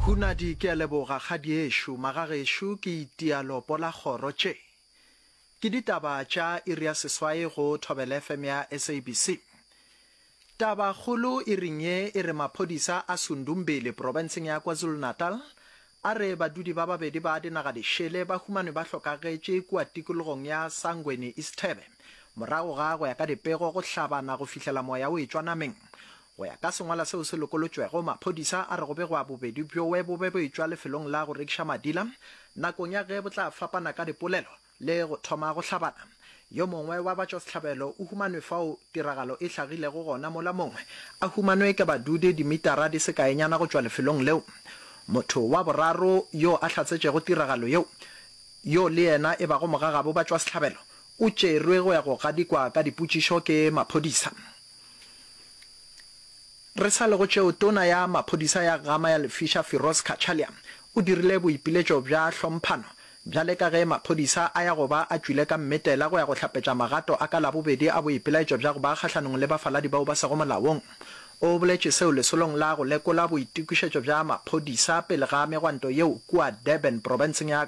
Hunadi, Ke a leboga kgadiešo. Magagešo, ke itia lopo la kgoro. Tše ke ditaba tša iri ya seswai go Thobela FM ya SABC. Taba kgolo iring ye e re maphodisa a Sundumbili profenseng ya KwaZulu-Natal a re badudi ba babedi ba dinaga di šele ba humanwe ba hlokagetše kua tikologong ya Sangweni Isithebe morago ga go ya ka dipego go hlabana go fihlela moya o etšwa nameng. Go ya ka sengwala seo se lokolotšwego, maphodisa a re go begwa bobedi bjoe bo be bo etšwa lefelong la go rekiša madila nakong ya ge bo tla fapana ka dipolelo le go thoma go hlabana. Yo mongwe wa batšwasehlabelo o humanwe fao tiragalo e hlagilego gona mola mongwe a humanwe ke badudi dimitara di se kaenyana go tšwa lefelong leo. Motho wa boraro yo a hlatsetšego tiragalo yeo, yo le yena e bago mogagabo batšwasehlabelo, o tšerwe go ya go gadikwa ka dipotšišo ke maphodisa. Re sa le go tšeo, Tona ya Maphodisa ya Ghama ya Lefiša Firoz Cachalia o dirile boipiletšo bja hlomphano bjale ka ge maphodisa a ya go ba a tšwile ka mmetela go ya go hlapetša magato a ka Labobedi a boipelaetšo bja go ba kgahlanong le bafaladi bao ba sego molaong. O boletše seo lesolong la go lekola boitokišetšo bja maphodisa pele ga megwanto yeo kua Durban, profenseng ya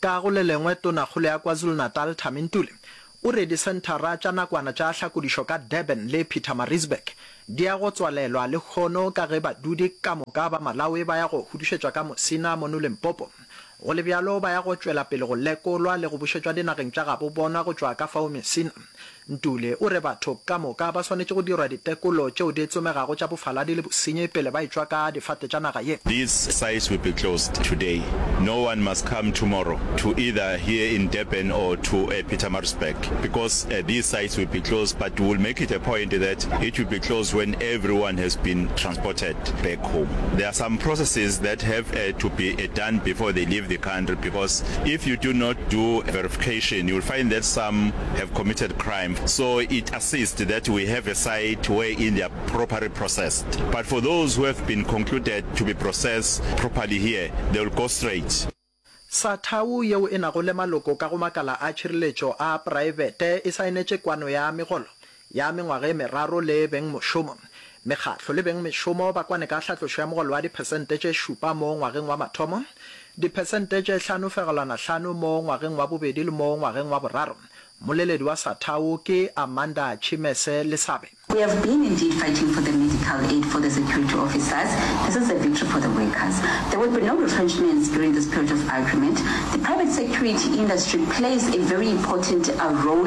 Ka go le lengwe, Tonakgolo ya KwaZulu-Natal Thami Ntuli o re disenthara tša nakwana tša tlhakodišo ka Durban le Pietermaritzburg di ya go tswalelwa lehono ka ge badudi ka moka ba Malawi ba ya go hudušetšwa ka Musina mono Limpopo. Go le bjalo, ba ya go tšwela pele go lekolwa le go bušetšwa dinageng tša gabo bona go tšwa ka fao Musina. Ntuli o re batho ka moka ba swanetše go dirwa ditekolo tšeo di tsomegago tša bofaladi le bosenyi pele ba etšwa ka difate tša naga ye. These sites will be closed today. No one must come tomorrow to either here in Durban or to a Pietermaritzburg because these sites will be closed but we will make it a point that it will be closed when everyone has been transported back home. There are some processes that have to be done before they leave the country because if you do not do verification you will find that some have committed crime so it assist that we have a site where in they are properly processed but for those who have been concluded to be process properly here they will go straight sa thau yeo e nago le maloko ka go makala a tšhireletšo a praebete e saenetše kwano ya megolo ya mengwaga e meraro le beng mošomo. Mekgatlo le beng mešomo ba kwane ka hlatlošo ya mogolo wa diphesente tše šupa mo ngwageng wa mathomo, diphesente tše hlano fegelwana hlano mo ngwageng wa bobedi le mo ngwageng wa boraro. Mmoleledi wa Sathau ke Amanda Chimese Lesabe. We have been indeed fighting for the medical aid for the security officers, this is a victory for the workers. There will be no retrenchments during this period of agreement. The private security industry plays a very important role.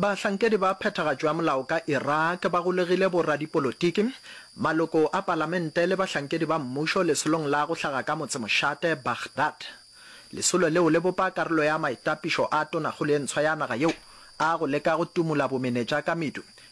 Bahlankedi ba phethagatšo ya molao ka Iraq ba golegile boradipolotiki, maloko a palamente le bahlankedi ba mmušo lesolong la go hlaga ka motsemošate Baghdad. Lesolo leo le bopa karolo ya maitapišo a tonakgolo e ntshwa ya naga yeo a go leka go tumola bomenetša ka medu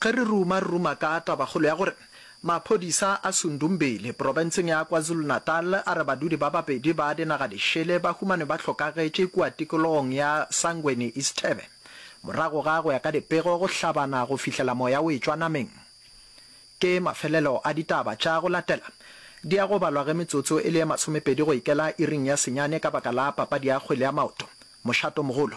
Ge re ruma, re ruma ka tabakgolo ya gore maphodisa a Sundumbili, profenseng ya KwaZulu-Natal, a re badudi ba babedi ba dinagalešele ba humanwe ba hlokagetše kua tikologong ya Sangweni Isithebe morago ga, go ya ka dipego, go hlabana go fihlela moya o etšwa nameng. Ke mafelelo a ditaba tša go latela. Di ya go balwa ge metsotso e le ye masomepedi go ikela iring ya senyane ka baka la papadi ya kgwele ya maoto, mošato mogolo.